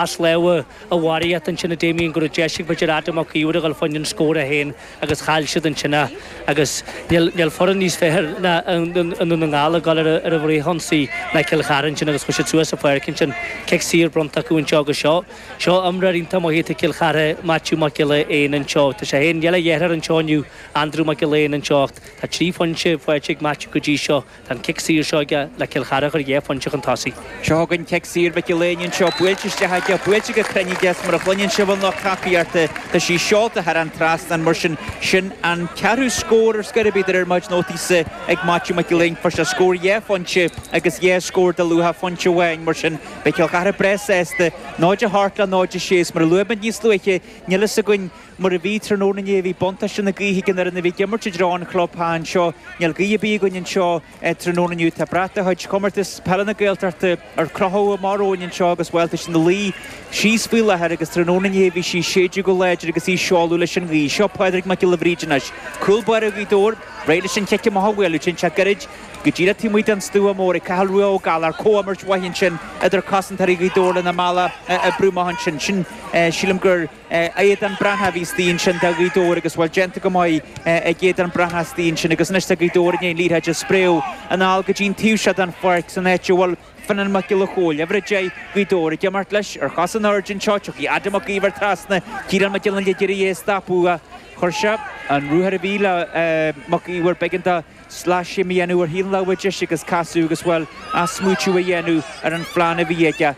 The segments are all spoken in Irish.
as lámha a bharraíocht ansin Damien go raibh deis ag b'fhéidir Adam Mac Íomhair a dhul faoin an scór é fhéin agus chaill siad ansin a agus níl níl foireann níos fearr i nDún na nGall ag dul ar a ar a bhfrithionsaí ná Cill Chartha ansin agus chuaigh siad suas an pháirc ansin cic saor bronnta acu anseo agus seo seo imreoir iontach maith do Chill Chartha Maitiú Mac Giolla Eáin anseo tá sé fhéin níl a dheartháir anseo inniu Andrew Mac Giolla Eáin anseo ach tá trí phointe faighte ag Maitiú go dtí seo Tá an cic saor seo aige le Cill Chartha a chur dhá phointe chun tosaigh. Seo chugainn cic saor Mhic Giolla Eáin anseo, buailte isteach aige, buailte go cruinn aige, is mar a chluineann sibh an lucht tacaíochta, tá sí seolta thar an trasnán, mar sin, sin an ceathrú scór ar scor ar bith ar mo chuid nótaíse ag Maitiú Mac Giolla Eáin, fuair sé scór dhá phointe agus dhá scór de luach pointe amháin, mar sin beidh Cill Chartha breá sásta, 0 a 8 le 0 a 6, is mar a luaigh muid níos luaithe, níl a fhios againn. Mar a bhí tráthnóna inné, bhí buntáiste na gaoithe ag an fhoireann a bhí ag imirt i dtreo an chlubtheach anseo. Níl gaoth ar bith againn anseo tráthnóna inniu. Tá brat de chuid Chomórtas Peile na Gaeltachta, ar crochadh amach romhainn anseo agus, bhuel, tá sí ina luí síos faoi láthair agus tráthnóna inné bhí sí ag séideadh go láidir agus í ag seoladh leis an ghaoth. Seo Pádraig Mac Giolla Bhríde anois, cúl báire Ghaoth Dobhair, réidh leis an chic amach a bhualadh. Téann sé gairid go díreach taobh amuigh den stua mór ag Cathal Rua Ó Gallchóir. Comhimirt mhaith ansin idir cosantóirí Ghaoth Dobhair lena mbealach a oibriú amach ansin. Sin, sílim, gur. Aodán Breathnach a bhí istigh ansin do Ghaoth Dobhair agus bhuel déanta go maith ag Aodán Breathnach istigh ansin agus anois tá Gaoth Dobhair i ndiaidh an liathróid a spréadh anall go dtí an taobh seo den pháirc san áit a bhfuil Fionnán Mac Giolla Chomhaill, uimhir 10 Gaoth Dobhair, ag imeacht leis, ar chosa in airde anseo, tiocfaidh Adam Mac Íomhair trasna, Ciarán Mac Fhionnaile ag iarraidh é a stopadh, chuir sé an ruathar a bhí le Mac Íomhair, b'éigean dó. sleaschéim a dhéanamh ar thaobh na láimhe deise agus casadh agus, bhuel, athsmaoitiú a dhéanamh ar an phlean a bhí aige.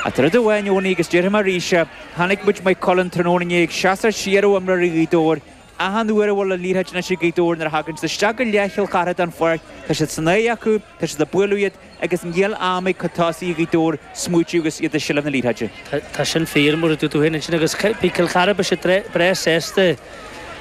Ach tá rud amháin inniu ann agus déarfaidh mé arís é, chonaic muid Maigh Cuilinn tráthnóna inné ag seasamh siar ó imreoirí Ghaoth Dobhair. Achan uair a bhfuil an liathróid anois ag Gaoth Dobhair nuair a thagann siad isteach i leath Chill Chartha den pháirc, tá siad san aghaidh acu, tá siad ag bualadh iad, Agus níl am ag cuid tosaithe Ghaoth Dobhair smaoitiú agus iad i seilbh na liathróide. Tá sin fíor, mar a dúirt tú féin ansin, agus beidh Cill Chartha, beidh siad breá sásta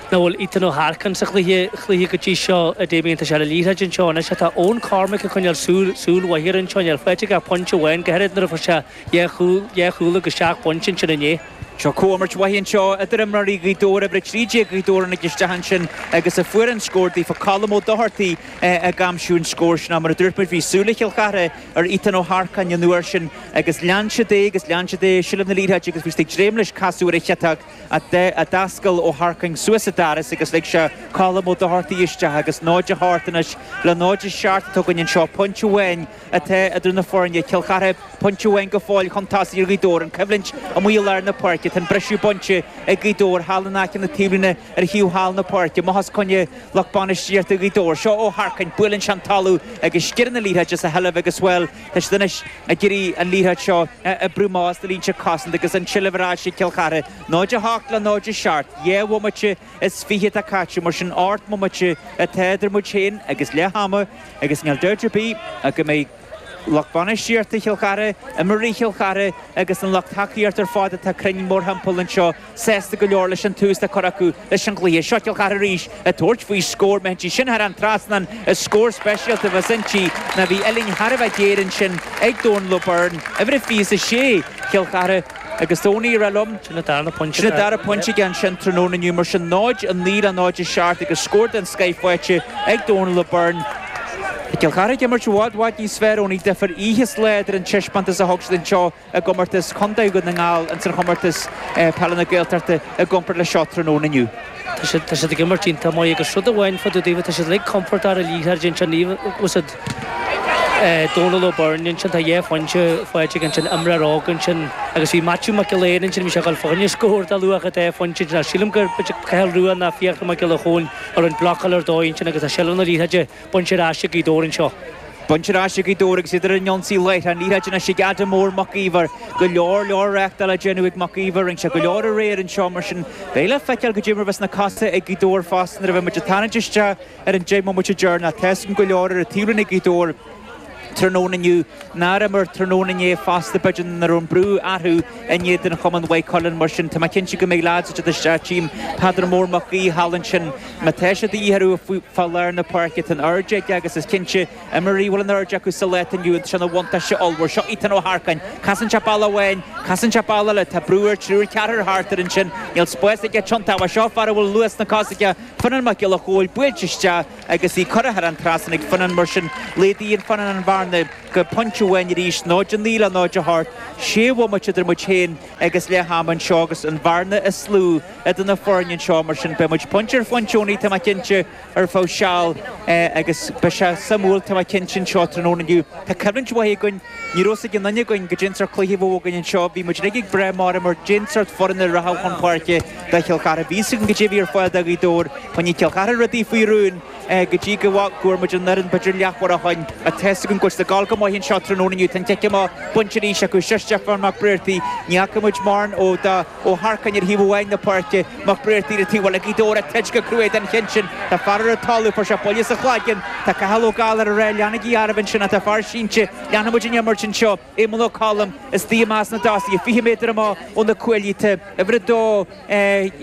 nach bhfuil Ethan Ó hEarcáin sa chluiche go dtí seo. Damien, tá sé le liathróid anseo anois ach tá Eoin Cormaic ag coinneáil súil mhaith air ansin. Níl faighte aige ach pointe amháin, go háirid nuair a fuair sé dhá chúl agus seacht bpointe ansin inné. Seo comhimirt mhaith anseo idir imreoirí Ghaoth Dobhair, uimhir 13 Gaoth Dobhair tháinig isteach ansin agus a fuair an scór daofa, Colm Ó Dochartaigh ag aimsiú an scóir sin. Ach mar a dúirt muid, bhí súil ag Cill Chartha ar Ethan Ó hEarcáin an uair sin agus lean siad é agus lean siad é i seilbh na liathróide agus bhí siad ag dréim leis casadh ar an chiotóg ach d'oscail Ó hEarcáin suas an doras agus lig sé Colm Ó Dochartaigh isteach agus 0 a 8 anois le 0 a 7 atá againn anseo, pointe amháin. atá idir na foirne. Cill Chartha pointe amháin go fóill chun tosaigh ar Ghaoth Dobhair, an choimhlint amuigh i lár na páirce. Tá an briseadh bainte ag Gaoth Dobhair thall in aice na taobhlíne ar thaobh thall na páirce. Amach os coinne lucht bainistíochta Ghaoth Dobhair. Seo Ó hEarcáin, buaileann sé an talamh agus sciorrann an liathróid as a sheilbh agus, bhuel, tá siad anois ag iarraidh an liathróid seo a oibriú amach as na línte cosanta agus an tseilbh ar ais ag Cill Chartha. 0-8 le 0-7. Dhá bhomaite. is fiche atá caite, mar sin ocht mbomaite atá idir muid féin agus leath ama agus níl dabht ar bith ach go mbeidh lucht bainistíochta Chill Chartha, imreoirí Chill Chartha agus an lucht tacaíochta ar fad atá cruinn mórthimpeall anseo sásta go leor leis an tús atá curtha acu leis an chluiche. Seo Cill Chartha arís ag tabhairt faoi scór, má théann sí sin thar an trasnán is scór speisialta a bheas inti ná bhí uillinn thar a bheith géar ansin ag Dónal O'Byrne, uimhir a 26 Chill Chartha. Agus do ní raibh liom. Sin an dara pointe aige ansin tráthnóna inniu. Mar sin, 0-9 le 0-7 agus scór den scoith faighte ag Dónal O'Byrne. Tá Cill Chartha ag imirt i bhfad, bhfad níos fearr Eoghainí, difear oíche is lae idir an teispeántas a thug siad anseo i gcomórtas Chontae Dhún na nGall ins an chomórtas peile na Gaeltachta i gcomparáid le seo tráthnóna inniu. Tá siad ag imirt iontach maith agus rud amháin fá dtaobh daofa, tá siad uilig compordach ar an liathróid ansin, níl, Dónal Ó Beirn ansin, tá dhá phointe faighte aige ansin, imreoir óg ansin. Agus bhí Maitiú Mac Giolla Eáin ansin, bhí sé ag dul fá choinne scór de luach dhá phointe ansin. Ach sílim gur b'fhéidir Cathal Rua ná Fiachra Mac Giolla Chomhaill a rinne blocáil ar dóigh ansin agus tá seilbh na liathróide bainte ar ais ag Gaoth Dobhair anseo. Bainte ar ais ag Gaoth Dobhair agus iad ar an ionsaí láithreach. An liathróid anois ag Adam Mór Mac Íomhair. Go leor, leor reáchtáil á déanamh ag Mac Íomhair. Rinne sé go leor aréir anseo mar sin beidh le feiceáil goidé an rud a bheas sna cosa ag Gaoth Dobhair fosta nuair a bheidh muid ag tarraingt isteach Ar an deich mbomaite deireanach tá 's againn go leor ar an taobhlíne ag Gaoth Dobhair tráthnóna inniu nár imir tráthnóna inné fosta b'fhéidir nach raibh an brú orthu in éadan chumann Mhaigh Cuilinn mar sin tá mé cinnte go mbeidh leithéidí de sea tchím Peadar Mór Mac Aoidh thall ansin má tá sé a dhíth orthu fá lár na páirce tá an airde aige agus is cinnte imreoirí a bhfuil an airde acu sa lá atá inniu ann tá sé ina bhuntáiste ollmhór seo Ethan Ó hEarcáin casann sé bealach amháin casann sé bealach eile tá brú air triúr ceathrar thart air ansin níl spás aige tiontú seo fear a bhfuil luas sna cosa aige Fionnán Mac Giolla Chomhaill buailte isteach agus í curtha thar an trasnán ag Fionnán, mar sin laghdaíonn Fionnán an bhearna go pointe amháin arís, 0-9 le 0-8, sé bhomaite idir muid féin agus leath ama anseo agus an bhearna is lú idir na foirne anseo. Mar sin beidh muid pointe ar phointe Eoghainí, tá mé cinnte, ar feadh seal agus beidh sé suimiúil, tá mé cinnte, anseo tráthnóna inniu. Tá coimhlint mhaith againn, ní raibh 's ag aon duine againn goidé an sórt cluiche a bheadh againn anseo, bhí muid uilig ag brath mar, mar goidé an sórt foireann a rachadh chun páirce, Beidh Cill Chartha bhí a fhios againn goidé a bhí ar fáil do Ghaoth Dobhair. Choinnigh Cill Chartha rudaí faoi rún go dtí go bhfuair muid an fhoireann b'fhéidir leathuair ó shin ach tá fhios againn go bhfuil siad ag dul go maith anseo tráthnóna inniu. Tá an cic amach bainte arís acu seo Stiofán Mac Briartaigh. Ní fhaca muid mórán dó. Ó hEarcáin ar thaobh amháin na páirce, Mac Briartaigh ar an taobh eile. Gaoth Dobhair ag troid go cruaidh don chinseal. Tá fear ar an talamh, fuair sé buille sa chloigeann. Tá Cathal Ó Gallchóir ag rá leanaigí oraibh ansin ach tá fear sínte. Leanfaidh muid an imirt anseo. Éamonn Ó Colm istigh i measc na dtosaithe, 20 méadar amach ó na cuaillí, tá uimhir 2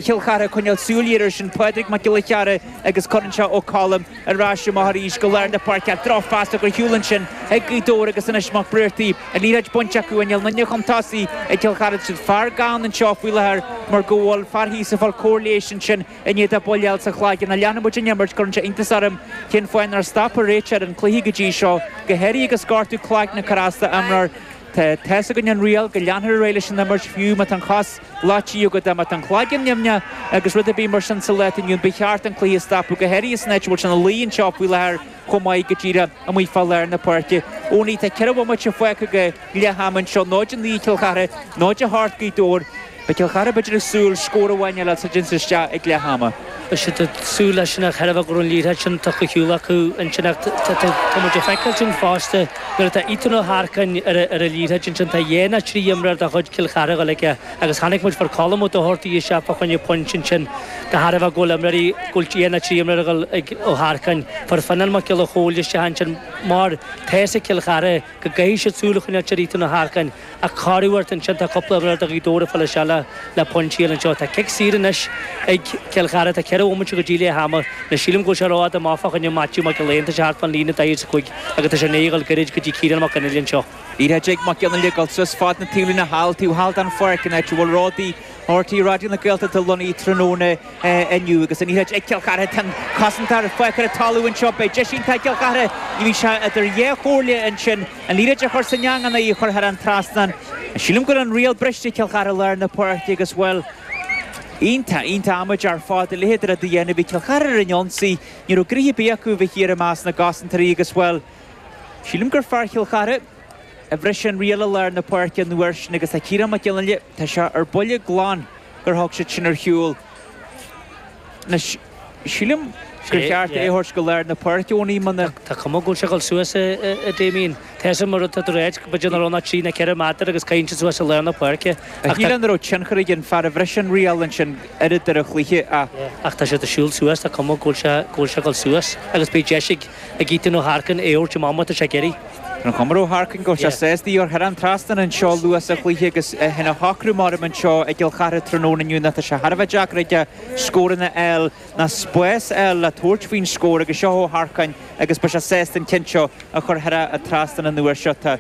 Chill Chartha ag coinneáil súil ghéar air sin, Pádraig Mac Giolla Chearra agus cuireann Ó Colm ar ais amach arís go lár na páirce ach drochphas tugtha ar shiúl ansin ag Gaoth Dobhair agus anois Mac Briartaigh, an liathróid bainte acu i Néal Naine chun tosaigh ag Cill Chartha. Fear gann anseo faoi láthair mar go bhfuil fear thíos ag fáil cóir leighis ansin. I ndiaidh dó buille a fháil sa chloigeann ach leanfaidh muid an imirt cuireann sé iontas orm cén fáth nár stop an réiteoir an cluiche go dtí seo. Go háirithe agus gortú cloigne Carasta imreoir tá tá's againn an riail go leanfar ar aghaidh leis an imirt fiú má tá an chos leáite Yuga dá mbeadh an cloigeann nimhneach agus rud ar bith mar sin sa lá atá inniu ba cheart an cluiche a stopadh go háirithe is an áit a bhfuil sé ina luí anseo faoi láthair chomh maith go díreach amuigh fá lár na páirce. Ó ní hea, tá ceithre bhomaite fágtha go leath ama anseo, 0-9 Cill Chartha, 0-8 Gaoth Dobhair. Beidh Cill Chartha b'fhéidir ag súil scór amháin eile sula dtéann siad isteach ag leath ama. Beidh siad ag súil leis sin ach de thairbhe go raibh an liathróid sin tugtha ar shiúl acu ansin ach tá muid ag feiceáil sin fosta nuair atá Ethan Ó hEarcáin ar an liathróid ansin tá dhá ná trí imreoir de chuid Chill Chartha ag dul chuige Agus chonaic muid fuair Colm Doherty isteach fá choinne pointe ansin, de thairbhe go bhfuil imreoirí, go bhfuil dhá ná trí imreoir ag Ó hEarcáin, fuair Fionnán Mac Giolla Chomhaill isteach ansin mar tá 'fhios ag Cill Chartha go gcaithfidh siad súil a choinneáilt ar Ethan Ó hEarcáin ach cabhrú ort ansin, tá cúpla imreoir de Ghaoth Dobhair ag filleadh seile le pointí eile anseo. Tá cic saor anois ag Cill Chartha, tá ceithre bhomaite go dtí leath ama, nó sílim go bhfuil sé rófhada amach fá choinne Maitiú Mac Gill-Eain, tá sé thart fán líne, 45, agus tá sé i ndiaidh a ghoil gairid go dtí Ciarán Mac Fhionnghaile anseo. Liathróid ag Mac Fhionnghaile ag goil suas fad na taobhlíne thall, taobh thall den pháirc, an áit a bhfuil Ródaí RTÉ Raidió na Gaeltachta lonnaithe tráthnóna inniu agus an liathróid ag Cill Chartha tá an cosantóir fágtha ar an talamh anseo. Beidh deis iontach ag Cill Chartha ní bheidh sé idir dhá chomhairle ansin an liathróid a chur san eang ná í a chur thar an trasnán. Sílim go bhfuil an riail briste ag Cill Chartha i lár na páirce agus, bhuel, iontach, iontach amaideach ar fad a leithéid de rud a dhéanamh. Bhí Cill Chartha ar an ionsaí, ní raibh gnoithe ar bith acu a bheith thiar i measc na gcosantóirí agus, bhuel, Sílim gur fear Chill Chartha a bhris an riail i lár na páirce an uair sin agus tá Ciarán Mac Fhionnghaile, tá sé ar buile glan gur thug siad sin ar shiúl. Anois, sílim gur cheart é a thabhairt go lár na páirce, ó ní hea. Tá cuma go bhfuil sé ag dul suas, a Damien. Tá sin mar atá tú a ráit, go b'fhéidir nach raibh ná trí ná ceithre méadar agus caitheann siad suas i lár na páirce. Ach níl a fhios an raibh tionchar ag an fear a bhris an riail ansin oiread ar an chluiche ach. Ach tá siad ag siúl suas, tá cuma go bhfuil sé ag dul suas agus beidh deis ag. ag Ethan Ó hEarcáin é a thabhairt amach má tá sé ag iarraidh. An chuma ar Ó hEarcáin go bhfuil sé sásta í a chur thar an trasnán anseo luath sa chluiche agus é fhéin a shocrú mar am anseo i gCill Chartha tráthnóna inniu ná tá sé thar a bheith deacair aige scóranna a fháil ná spás a fháil le tabhairt faoin scór agus seo Ó hEarcáin agus beidh sé sásta an ceann seo a chur thar an trasnán an uair seo. Tá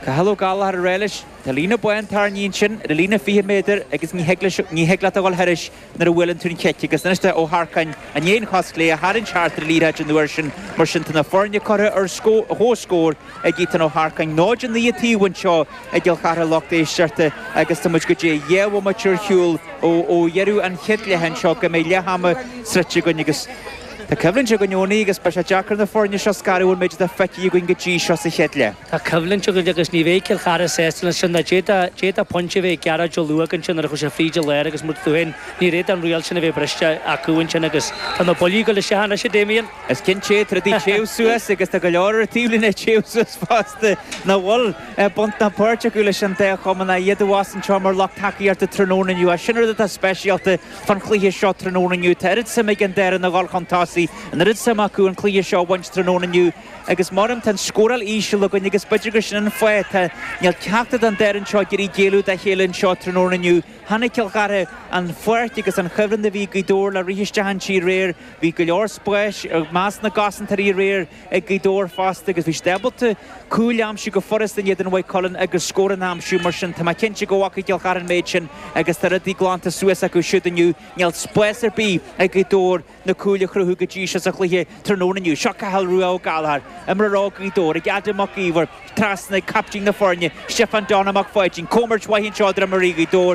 Cathal Ó Gallchóir ag rá leis. Tá líne bhán tarraingthe ansin ar an líne 20 méadar agus ní thig leis, ní thig leat a dhul thairis. nuair a bhuaileann tú an chic agus anois tá Ó hEarcáin i ndiaidh an chos chlé a tharraingt thart ar an liathróid an uair sin mar sin tá na foirne curtha ar comhscór ag Ethan Ó hEarcáin 0-9 an taobh anseo i gCill Chartha lucht éisteachta agus tá muid go díreach dhá bhomaite ar shiúl ó dheireadh an chéad leath anseo go mbeidh leath ama sroichte againn agus tá coimhlint againn Eoin agus beidh sé deacair na foirne seo a scaradh ón méid atá feicthe againn go dtí seo sa chéad leath. Tá coimhlint againn agus ní bheidh Cill Chartha sásta leis sin. D'fhéadfadh pointe a bheith ag Gearóid Ó Luaigh ansin nuair a chuir sé fríd i lár agus, muid fúinn, níor fhéad an riail sin a bheith briste acu ansin agus tá na buillí ag dul isteach anois, a Damien. Is cinnte, tá rudaí ag téamh suas agus tá go leor ar an taobhlíne ag téamh suas fosta nach bhfuil baint ná páirt acu leis an dá chumann, ach iad a bheas anseo mar lucht tacaíochta tráthnóna inniu. Agus sin rud atá speisialta fán chluiche seo tráthnóna inniu. Tá oiread suim ag an dá fhoireann a dhul chun tosaigh, an oiread suim acu an cluiche seo a bhaint tráthnóna inniu, Agus mar tá an scóráil íseal againn agus b'fhéidir gur sin an fáth, tá, níl ceachtar den dá fhoireann seo ag iarraidh géilleadh dá chéile anseo tráthnóna inniu. Chonaic Cill Chartha an pháirc agus an chuibhreann a bhí ag Gaoth Dobhair le rith isteach inti aréir. Bhí go leor spáis i measc na gcosantóirí aréir ag Gaoth Dobhair fosta agus bhí siad ábalta cúil a aimsiú go furasta in éadan Mhaigh Cuilinn agus scóranna a aimsiú. Mar sin, tá mé cinnte go bhfaca Cill Chartha an méid sin agus tá rudaí glanta suas acu siúd inniu. Níl spás ar bith ag Gaoth Dobhair. na cúil a chruthú go dtí seo sa chluiche tráthnóna inniu. Seo Cathal Rua Ó Gallchóir, imreoir óg Ghaoth Dobhair, ag Adam Mac Íomhair trasna ag captaen na foirne, Stiofán Donna Mac Pháidín. Comhimirt mhaith anseo idir imreoirí Ghaoth Dobhair.